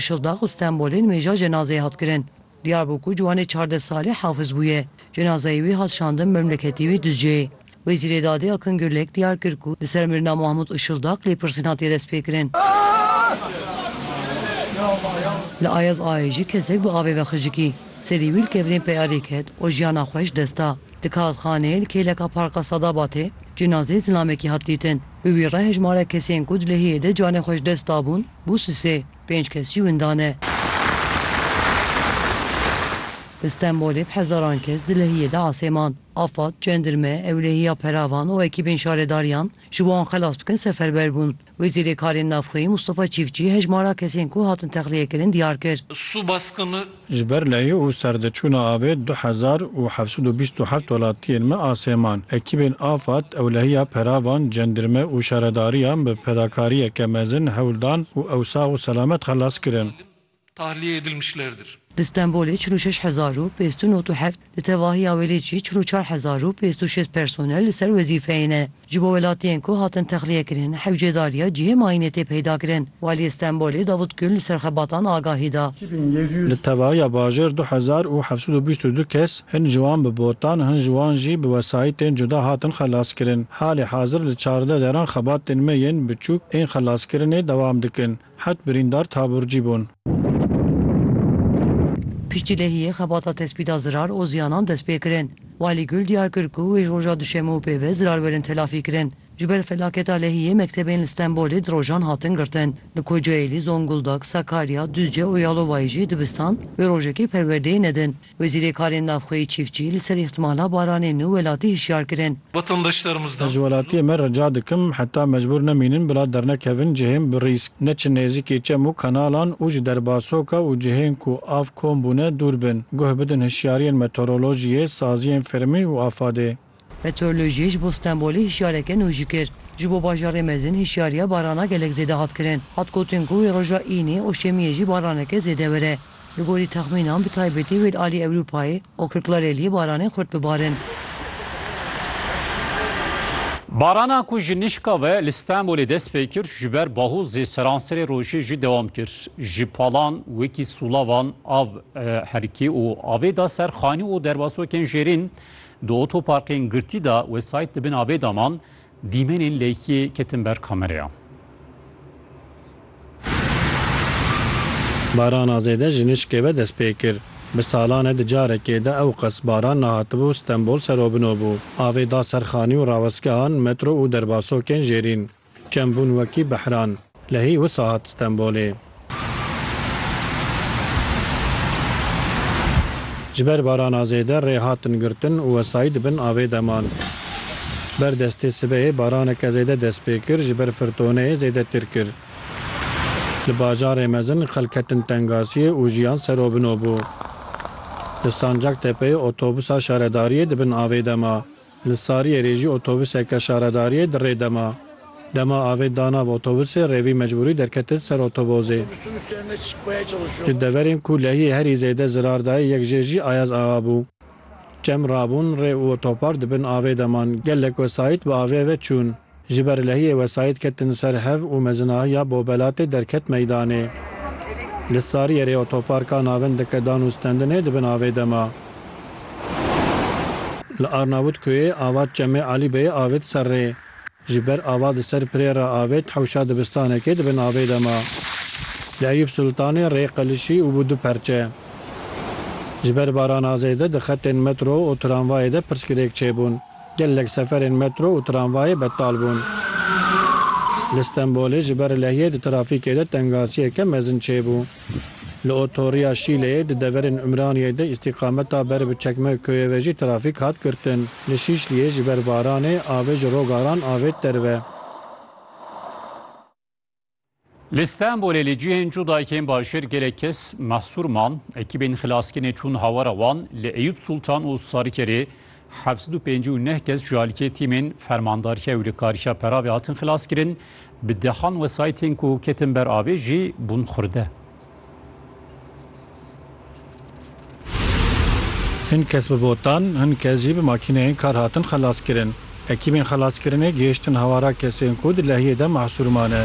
Şildax û Stenbolê nimêja cenazeyê hat kirin. Diyarbokûr ciwanê çardeh salî Hafiz bûye. Cenazeyê wî hat şandin memleketê wî Duzceyê. Wezîrê Dadê Akın Gürlek diyar kir ku li ser mirina Mahmut Işildax lêpirsîn hatiye destpêkirin. Li Ayaz Aê jî kesek bi avê ve xicikî. Serî wî li kevirên peyarê ket û jiyana xwe ji dest da. Di kalxaneyê li kêleka Parka Sadabatê cenazeyê zilamekî hat dîtin. Bi wî re hejmarek kesên ku di lehiyê de canê xwe ji dest dabûn, Bû sisê, pênc kes jî winda ne. Li Stenbolê bi hezaran kes di lehiyê de asê man. Afad, cendirme, ewlehiya peravan û ekîbên şaredariyan ji bo wan xelas bikin seferber bûn. Wêzîrê Karên Navxweyî Mustafa Çîfçî hejmara kesên ku hatin texliyekirin diyar kir. Su baskını Ji ber lehî û serdiçûna avê du hezar û heft sed û bîst û heft welatiyên me a Sêman, ekîbên Afad, Ewlehiya Peravan, Cendirme û Şaredariyan bi fedakariyeke mezin hewl dan û ew sax û selamet xelas kirin. Di Stenbolê çil û şeş hezar û pênc sed û nod û heft, di tevahiya Wêlêcî çil û çar hezar û pênc sed û şêst personel li ser wezîfeyê ne. Ji bo welatiyên ku hatin texliyekirin hewcêdar ya cihê mayînê tê peydakirin. Waliyê Stenbolê Davut Gül li ser xebatan agahî da. Li tevaya bajêr du hezar û heft sed û bîst û du kes hin ji wan bi botan hin ji wan jî bi wesayîtên cuda hatin xelaskirin. Halê hazir li çardeh deran xebatên me yên biçûk ên xelaskirinê dewam dikin. Heft birîndar taburcî bûn. Piştî lehiyê xebata tespîta zirar û ziyanan dest pê kirin. Walî Gul diyar kir ku wê ji roja duşemê û pê ve zirar werin telafî kirin. Ji ber felaketa lehiyê mektebên li Stenbolê di rojan hatin girtin. Li Kocaelî, Zonguldak, Sakarya, Duzce û Yalovayê jî dibistan wê rojekê perwerdeyê nedin. Wezîrê Karên Navxweyî Çîfçî li ser îhtimala baranê nû welatî hişyar kirin. Ez ji welatiyê me rica dikim heta mecbûr nemînin bila dernekevin cihên bi rîsk, neçin nêzîkî çem û kanalan û ji derbasoka û cihên ku av kom bûne dûr bin. Guh bidin hişyariyên meteorolojiyê, saziyên fermî û afadê. Meteorolojiyê ji bo Stenbolê hişyareke nû jî kir. Ji bo bajarê mezin hişyariya barana gelek zêde hat kirin. Hat gotin ku wê roja Înê û Şemiyê jî baraneke zêde were. Li gorî texmînan bi taybetî wê li alî Ewropayê û Kirklareliyê baranên xurt bibarin. Barana ku ji nişka ve li Stenbolê dest pê kir ji ber bahûzê seranserê rojê jî dewam kir. Ji palan wekî sûlavan av herikî û avê da ser xanî û derbasokên jêrîn. Di otoparkên girtî de wesayît di bin avê de man, dîmenên lêkiyê ketin ber kamereyan. Barana zêde ji nişkê ve dest pê kir. Bi salan e di carekê de ewqas baran nehatibû, Stenbol serobino bû. Avê da ser xanî û rawestgehan, metro û derbasokên jêrîn. Çend bûn wekî behran. Lehî wisa hat Stenbolê. Ji ber barana zêde rê hatin girtin û wesayî di bin avê de man. Ber destê sibehê baraneke zêde dest pê kir ji ber firtoneyê zêdetir kir. Li bajarê mezin xelk ketin tengasiyê û jiyan serobino bû. Li Sancaktepe'yê otobusa şaredariyê di bin avê de ma. Li Sariyerê jî otobuseke şaredariyê di rê de ma. Dema avê da nav otobusê rêvî mecbûrî derketin ser otobozê. Ji deverên ku lehiyê herî zêde zirar dayê yek jê jî Ayaz Axa bû. Çem rabûn rê û otopar di bin avê de man. Gelek wesayît bi avê ve çûn. Ji ber lehiyê wesayît ketin ser hev û mezinahiya Bobelatê derket meydanê. Li Sariyerê otoparka navin dike dan û stendinê di bin avê de ma. Li Arnavutkuyê ava Çemê Alî Beyê avêt ser rê. Ji ber ava di ser pirê re avêt hewşa dibistanekê di bin avê de ma. Li Eyûb Sultanê rê qilişî û bû du perçe. Ji ber barana zêde di xetên metro û tramvayê de pirsgirêk çêbûn. Gelek seferên metro û tramvayê betal bûn. Li Stenbolê ji ber lehiyê di trafîkê de tengasiyeke mezin çêbû. Li otoriya Şîleyê di deverên Umraniyê de îstîqameta ber bi Çekmeköyê ve jî trafîk hat girtin. Li Şîşliyê ji ber baranê avê ji Rogaran avêt derve. Li Stenbolê li cihên cuda yên bajêr gelek kes mehsûr man. Ekîbên xilaskirnê çûn hawara wan li Eyûp Sultan û Sarkerê heft sed û pêncî û neh kes ji aliyê tîmên fermandariya wilikarîya peravê hatin xilaskirin. Bi dehan wesayîtên ku ketin ber avê jî bûn xurde. Hin kes bi botan, hin kes jî bi makîneyên kar hatin xelaskirin. Ekîbên xelaskirinê gihiştin hawara kesên ku di lehiyê de mahsûr mane.